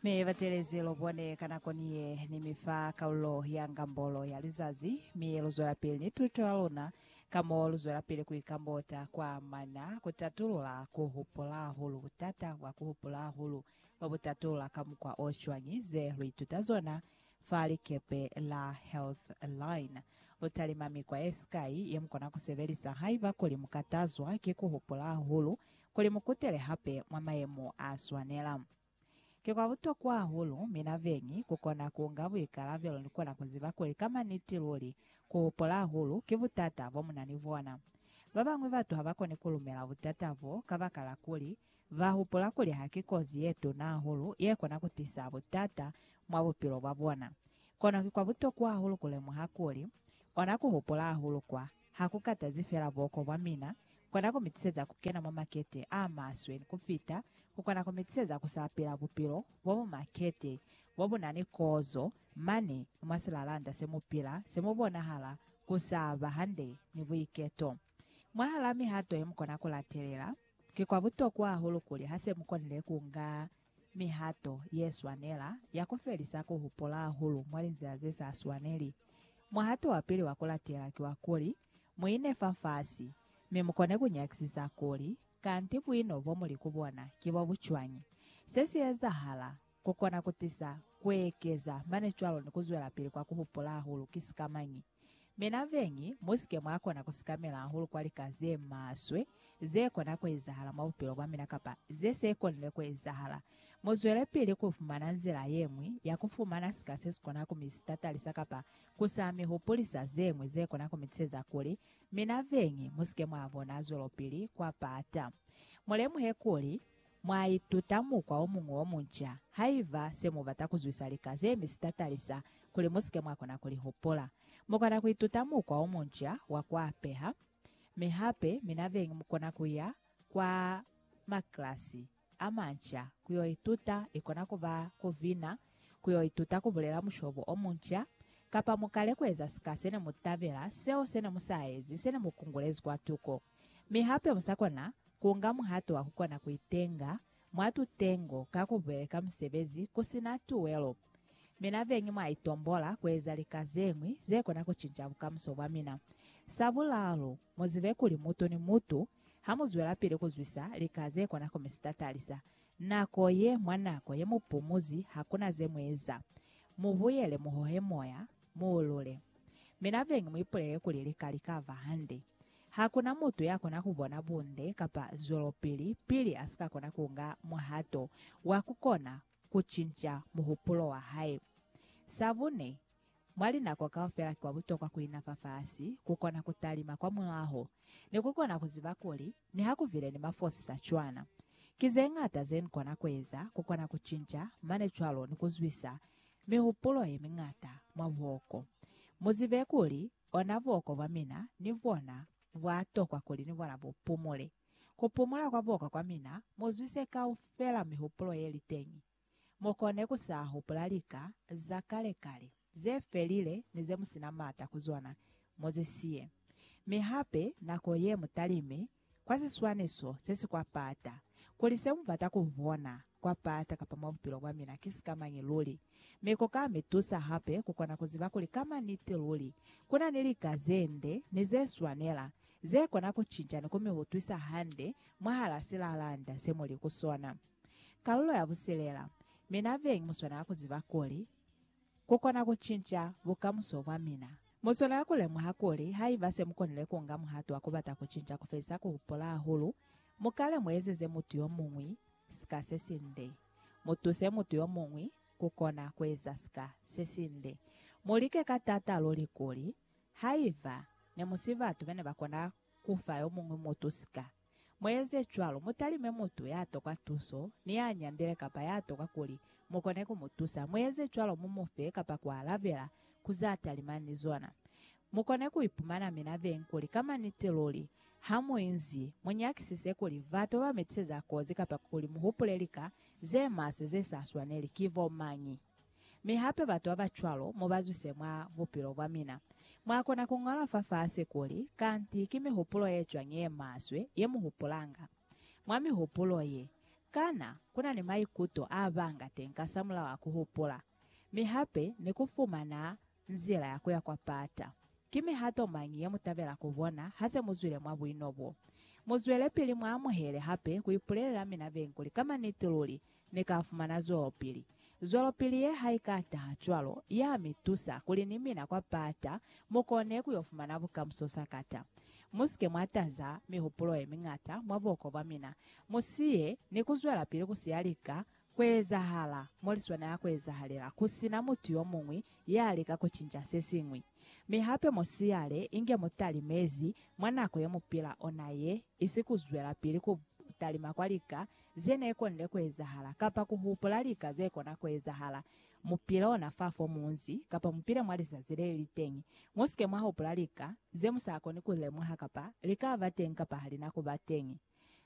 Mi batelezi lu bone ka nako ni ye ni mi fa kalulo ya Ngambolo ya Lizazi, mi lu zwelapili ni tuto ya luna, ka mo lu zwelapili ku ikambota kwa mana ku tatulula ku hupula hahulu, butata bwa ku hupula hahulu lwa bu tatulula ka mukwa o cwañi? Ze lu ituta zona fa likepe la Healthline. Lu talima mikwa ye sikai ye mu kona ku sebelisa haiba kuli mu katazwa ki ku hupula hahulu kuli mu kutele hape mwa mayemo a swanela. Ki kwa butokwa hahulu mina beñi ku kona ku nga buikalabelo ni kona ku ziba kuli ka maniti luli ku hopola hahulu ki butata bo mu na ni bona. Ba bañwi batu ha ba koni ku lumela butata bo kabakala kuli ba hupula kuli ha ki kozi ye tuna hahulu ye kona ku tisa butata mwa bupilo bwa bona. Kono ki kwa butokwa hahulu ku lemuha kuli ona ku hopola hahulu kwa Ha ku katazi fela buoko bwa mina, kona ku mi tiseza ku kena mwa makete a maswe ni ku fita, ku kona ku mi tiseza ku sapela bupilo bo bu makete, bo bu na ni kozo, mane mwa silalanda se mu pila, se mu bonahala ku sa ba hande ni buiketo. Mwahal'a mihato ye mu kona ku latelela, ki kwa butokwa hahulu kuli ha se mu konile ku nga Mihato ye swanela ya ku felisa ku hupola hahulu mwa linzila ze sa swaneli. Muhato wa pili wa ku latela ki wa kuli, mu ine fafasi, mi mu kone ku nyakisisa kuli, Kanti buino bo mu li ku bona ki bwa bu cwañi? Se si ezahala, ku kona ku tisa ku ekeza mane cwalo ni ku zwelapili kwa ku hupola hahulu ki sikamañi? Mi na beñi, musike mwa kona ku sikamela hahulu kwa lika ze maswe ze kona ku ezahala mwa bupilo bwa mina kapa ze se konile ku ezahala. Mu zwele pili ku fumana nzila ye ñwi ya ku fumana sika se si kona ku mi sitatalisa kapa ku sa mi hupulisa ze ñwi ze kona ku mi tsheza kuli mi na beñi. Musike mwa bona zwelopili kwa pata. Mu lemuhe kuli, Mwa ituta mukwa o muñwi o munca haiba se mu bata ku zwisa lika ze mi sitatalisa kuli mu si ke mwa kona ku li hupula. Mu kona ku ituta mukwa o munca wa ku apeha, mi hape mina beñi mu kona ku ya kwa maklasi a manca ku yo ituta, i kona ku ba ku bina, ku yo ituta ku bulela mushobo o munca, kapa mu kale ku eza sika se ne mu tabela, seo se ne mu sa ezi, se ne mu kungulezi kwa tuko. Mi hape mu sa kona ku nga muhato wa ku kona ku itenga mwa tutengo ka ku beleka musebezi ku si na tuwelo. Mi na beñi mwa itombola ku eza lika ze ñwi ze kona ku cinca bukamuso bwa mina. Sa bulalu, mu zibe kuli mutu ni mutu, ha mu zwelapili ku zwisa lika ze kona ku mi sitatalisa nako ye, mwa nako ye mu pumuzi ha ku na ze mu eza, mu buyele mu hohe moya, mu ulule. Mi na beñi mu ipulele kuli lika li ka ba hande. Ha ku na mutu ya kona ku bona bunde kapa zwelopili pili a si ka kona ku nga muhato wa ku kona ku cinca muhupulo wa hae. Sa bune, mwa linako kaufela ki kwa butokwa ku ina fafasi, ku kona ku talima kwa mulaho, ni ku kona ku ziba kuli niha ku bile ni mafosi sa cwana. Ki ze ñata ze ni kona ku eza ku kona ku cinca mane cwalo ni ku zwisa mihupulo ye miñata mwa buhoko. Mu zibe kuli Ona buoko bwa mina ni bona bwa tokwa kuli ni bona bu pumule. Ku pumula kwa buoko kwa mina mu zwise kaufela mihupulo ye li teñi. Mu kone ku sa hupula lika za kale kale, ze felile ni ze mu si na mata ku zona, mu zi siye. Mi hape nako ye mu talime kwa siswaniso se si kwa pata, kuli se mubata ku bona kwa pata kapa mwa bupilo bwa mina ki sikamañi luli. Mi ko ka mi tusa hape ku kona ku ziba kuli kama niti luli ku na ni lika ze nde ni ze swanela ze kona ku cinca ni ku mi utwisa hande mwahal'a silalanda se mu li ku sona. Kalulo ya busilela, Mina beñi mu swanela ku ziba kuli, ku kona ku cinca bukamuso bwa mina. Mu swanela ku lemuha kuli haiba se mu konile ku nga muhato wa ku bata ku cinca ku felisa ku hupola hahulu, mu kale mu ezeze mutu yo muñwi sika se sinde. Mu tuse mutu yo muñwi ku kona ku eza sika se sinde. Mu like ka t'ata luli kuli, haiba ne mu si batu be ne ba kona ku fa yo muñwi mutu sika, Mueze cwalo, mutalime mutu ya tokwa tuso, ni ya nyandile kapa ya tokwa kuli mukone ku mu tusa. Mueze cwalo mu mu fe kapa ku alabela ku za talima ni zona. Mukone ku ipumana mina beñi kuli ka maniti luli, ha mu inzi, mu nyakisise kuli batu ba mi tiseza kozi kapa kuli mu hupule lika ze maswe ze sa swaneli ki bo mañi. Mi hape batu babacwalo mubazwise mwa bupilo bwamina. Mwakona kuñola fafasi kuli, Kanti ki mihupulo yecwañi yemaswe yemuhupulanga? Mwa mihupulo ye, kana kuna ni maikuto abanga teñi kasamulaho a kuhupula? Mi hape ni kufumana nzila ya kuya kwa pata. Ki mihato mañi yemutabela kubona hase muzwile mwa buino bo? Muzwelepili muamuhele hape kuipulelela mina beñi kuli ka maniti luli Ni ka fumana zwelopili. Zwelopili ye ha i ka taha cwalo, ya mi tusa kuli ni mina kwa pata mu kone ku yo fumana bukamuso sakata. Mu si ke mwa taza mihupulo ye miñata mwa buhoko bwa mina. Mu siye ni ku zwelapili ku siya lika ku ezahala mo li swanela ku ezahalela, ku si na mutu yo muñwi ya lika ku cinca se siñwi. Mi hape mu siyale inge mu talimezi mwa nako ye mu pila ona ye, isi ku zwelapili ku talima kwa lika ze ne konile ku ezahala, kapa ku hupula lika ze kona ku ezahala. Mu pile ona fa fo mu nzi, kapa mu pile mwa lizazi le li li teñi. Mu si ke mwa hupula lika ze mu sa koni ku li lemuha kapa li ka ba teñi kapa ha li na ku ba teñi.